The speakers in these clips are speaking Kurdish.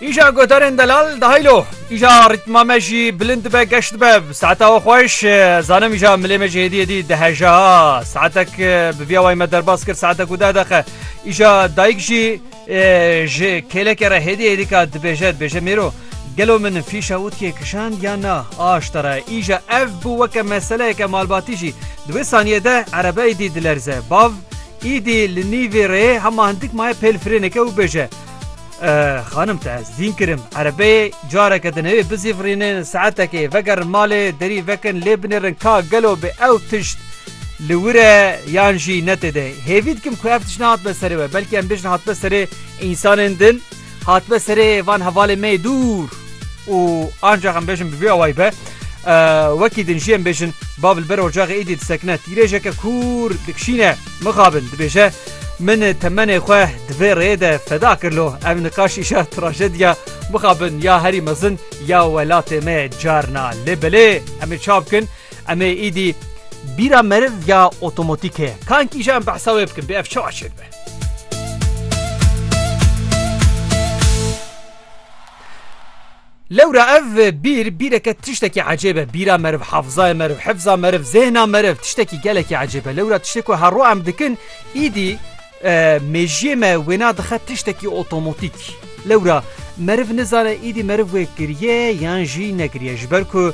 Îja godarên delal dahilo îja rîtma me jî bilind dibe geş dibe saeta we xweş zanim îja milê me jî hêdî hêdî diheja saetek bi vîya way me derbas kir saete ku deh dexe îja dayik jî ji kêlekê re hêdî hêdî ka dibêje dibêje mêro gelo min fîşa witiye kişand ya na aşta re îja ev bû weke meseleyeke malbatî jî di wê saniyê de erebeyê dî dilerze bav Îdî li nîvê rê hema hindik maye pêl firêneke û bêje, Xanim te ez dîn kirim, erebeyê careke dinewê bizîvirînin, saetekê vegerin malê, derî vekin lê binêrin ka gelo bi ew tişt li wir e yan jî ne tê de. Hêvî dikim ku ev tişt nehatbe serê we, belkî em bêjin hatbe serê însanên din. Hatime serê van hevalê me dûr û ancax em bêjin bi vê awayî be wekî din jî em bêjin bav li ber ocaxê êdî disekine tîrêjeke kûr dikişîne mixabin dibêje min temenê xwe di vê rêyê de feda kir lo ev niqaş îşa trajediya mixabin ya herî mezin ya welatê me carna lê belê em ê çav bikin em ê êdî bîra meriv ya otomotîk heye kankî jî em behsa wê bikin bê ev çawa çêdibe Lewra ev bîr bîreke tiştekî ecêb e bîra meriv hefzaya meriv hefza meriv zêhna meriv tiştekî gelekî ecêb e lewra tiştê ku herro em dikin îdî mêjiyê me wêna dixe tiştekî otomotîk lewra meriv nizane îdî meriv wê kiriye yan jî nekiriye ji ber ku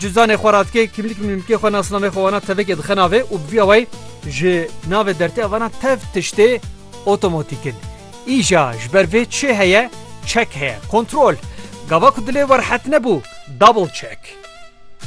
Cizanê xwe ra dike, kimlik mimlikê xwe nasnamê xwe wana tevekê dixe navê û bi vî awayî ji navê dertê avana tev tiştê otomotîk in. Îja ji ber vê çi heye? Çek heye, kontrol. Gava ku dilê we rihet nebû, double check.